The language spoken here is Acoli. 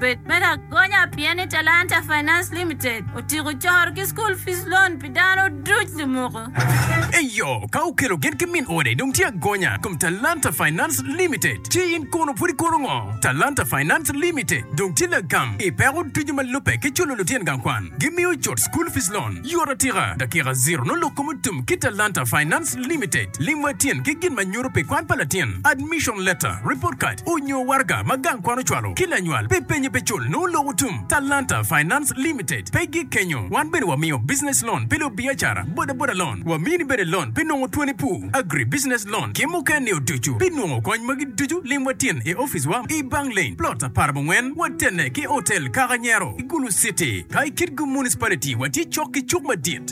Bed me lagonya pien ni Talanta Finance Limited otyeko coro ki School Fees Loan pi dano duc lumuku. Eyo, ka okelo gen ki min ode dong tye agonya i kom Talanta Finance Limited. Ci in kono pud ikono ngo? Talanta Finance Limited dong tye lagam i peko ducu ma lubbe ki culo lutyen gang kwan. Gimiyo cut School Fees Loan yot atika, dakika ziro nongo lok kom otum ki Talanta Finance. Trust Limited, lim wa tyen ki gin ma nyuto pi kwan pa latin, admission letter, report card, onyo waraga ma gang kwan ocwalo ki lanywal pi penye pe cul nongo lok otum. Talanta Finance Limited pe gik kenyo, wan bene wamiyo business loan pi lubiacara, boda boda loan, wamini bene loan pi nongo twoni pur, agri business loan ki muken ni oducu. Pi nongo kony magi ducu lim wa tyen i office wa i Bang Lane, plot apar mungwen, watene ki Hotel Kaka Nyero, i Gulu City. Ka i Kitgum Municipality watye cok ki cuk madit.